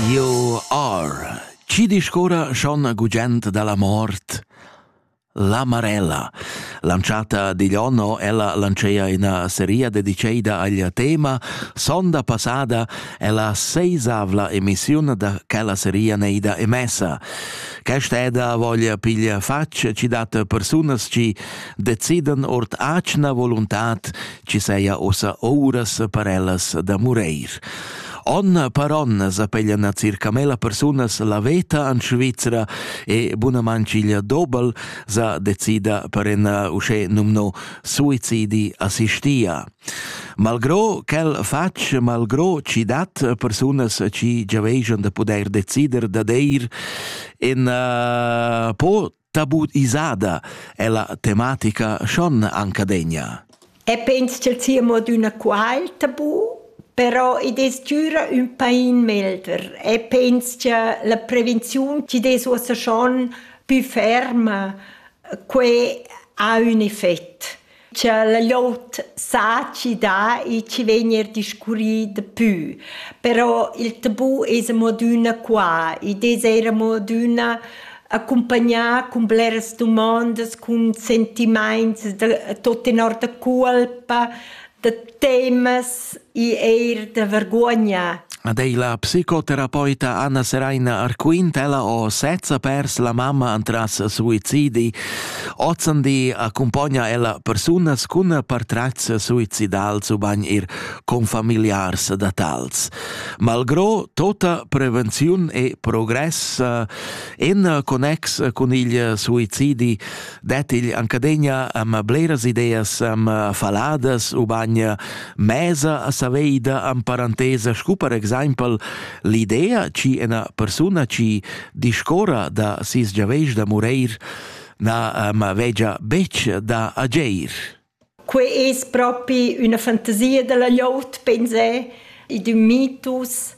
Io ar. Chi discorra schon gugent dalla mort? La Marella, lanciata digl onno, ella lancea ina seria dediceida agl tema Sonda passada è la seisavla emissiun da quella seria neida emessa. Quest'eda voglia piglia facc ci dat persunas ci decidan ort acna voluntad chi seia ussa ouras per ellas da mureir. Onna per onna s'appeglian circa mela persunas la veta an Svizra e bunamanchiglia Dobel sa decida per en usce numno suicidi assistia. Malgro quel fatg, malgro ci dat persunas ci giaveigion da pudair decider da deir, en uh, po Tabut isada è la tematica schon ancadegna. E pens ch'el sia mo d'üna qual tabu, però id es düra ün pain melder e pens cha la prevenziun chi des uossa schon pü ferma, que ha ün effet. cha la glot saci dà e chi vegn eir discurrì dapü. Però il tabù es amo adüna qua. Id es eir amo adüna accumpagnà cun bleras dumondas, cun sentimaints da tot tenor da culpa, da temas e eir da vergogna. Ad ei la psicoterapeuta Anna Seraina Arquintella o sezza pers la mamma antras suicidi. Ozzandi accompagna ella persunas cun partrats suicidals u bagn ir confamiliars da tals. Malgro tota prevenziun e progress eh, en connex cun il suicidi dat il ancadegna am bleras ideas am faladas u bagna mesa a saveida am parantesa scu per exaimpel l'idea ci ena persuna ci discora da sis giaveis da mureir na am vegia betg da ageir. Quei es propi üna fantasia dalla glieud, pensé. Id ün mitus.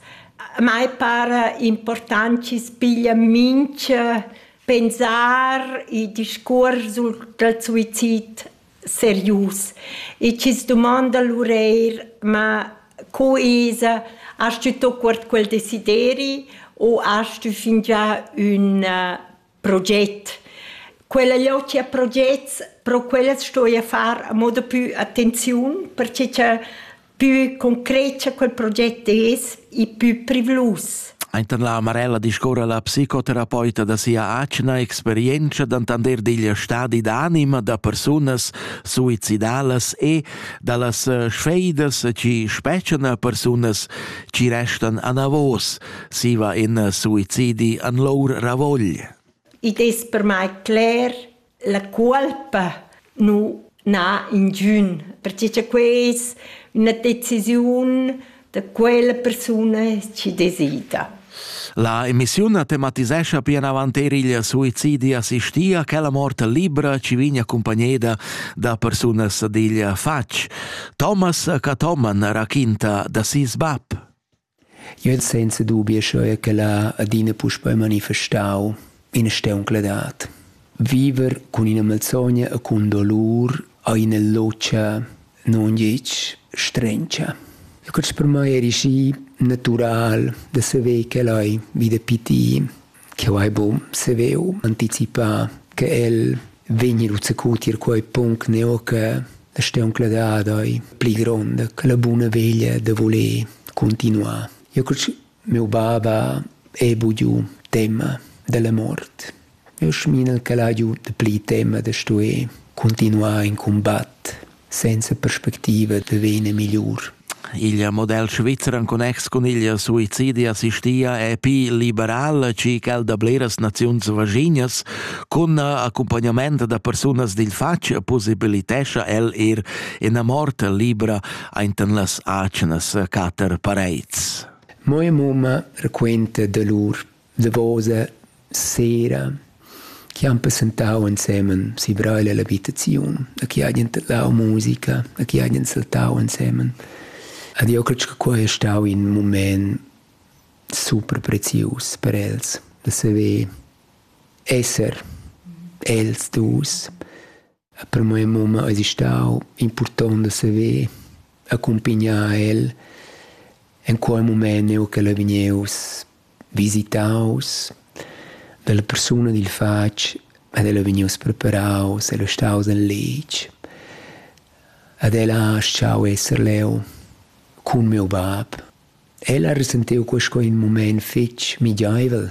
A mai para important chi's piglia mincha pensar e discuors sul dal suizid serius. E chi's dumanda lur eir: «Ma co esa? Hast tü tuot quart quel desideri o hast tü fingià ün proget. Quella logia progets, pro quellas sto io far a moda più attenziun, perché cha più concreta quel proget es e più privlus. Aintan la Marella discorra la psicoterapeuta da sia atgna experienza d'antander digl stadi d'anima da persunas suicidalas e da las eh, sfeidas ci speccian a persunas ci restan anavos, Siva in suicidi an lour ravogl. Id es per mai cler la cuolpa nu na ingiün, perche cha quai es üna decisiun da quella persuna chi desida. La emissiun tematisescha pien avant er il suicidi assistia quella mort libra ci vigna accompagneda da persunas digl fatg. Thomas Catoman raquinta da sis bab. Jeu el senza dubi aschia ch'el ha adina puspei manifestau ina steuncladad. Viver cun ina malsogna e cun dolur ha ina lozcha nungetg strentscha. E quest per mei eri schi natural da saver ch'el ei vi da pitir. Cheu hai buc saveu anticipar che el vegni lu zacu tier quei punct neu che la steuncla dad ei pli gronda che la buna veglia da voler continuar. Io cul miu bab ha ei bugiu tema dalla mort. Io sminel ch'el ha giu dapli tema da stuer continuar in combatt senza perspectiva da vena migliur. Il model svizzer en connex cun il suicidi assistia è pi liberal che quel da bleras naziuns vaginas. Cun accompagnament da persunas dil fatg possibilitescha el er ina mort libra ainten las acnas cater parets. Moe mumma raquenta da lur davosa sera chi han passantau ensemen si Brail e l'abitaziun, a chi hajan tadlau musica, a chi hajan saltau ensemen. Ed io credo che quai è stau in moment super prezius per els, da saver esser els dus E per mia mumma ais stau impurtont da saver accumpignar el in quei mument eau ch'el ei vgnieus visitaus dalla persuna dil fatg ed el ei vgnieus preparaus, el ei staus in letg ed el ha schau esser leu cun miu bab. El ha resentiu quei sco in mument fetg migiaivel.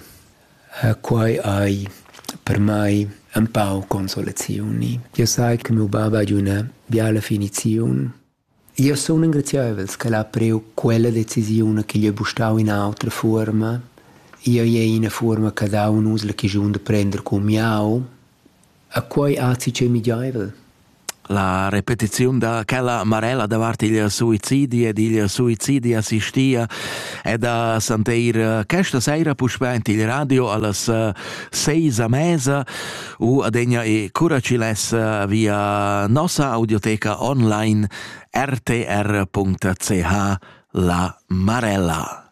Quei ei per mei empau consolazioni. Jeu sai che miu bab ha üna biala finiziun. Io sun engraziaivels ch'el ha priu quella decisiun che gli ha bustau in autra fuorma. Io ei ina fuorma che dau un usla chigiun da prender cun miau. A quai atti ch'ei migiaivel? La repetiziun da quella marella davart il suicidi ed il suicidi assistia ed ha santeir questa saira puspè in il radio allas seis a mesa u adegna e curaciles via nossa audioteca online rtr.ch la marella.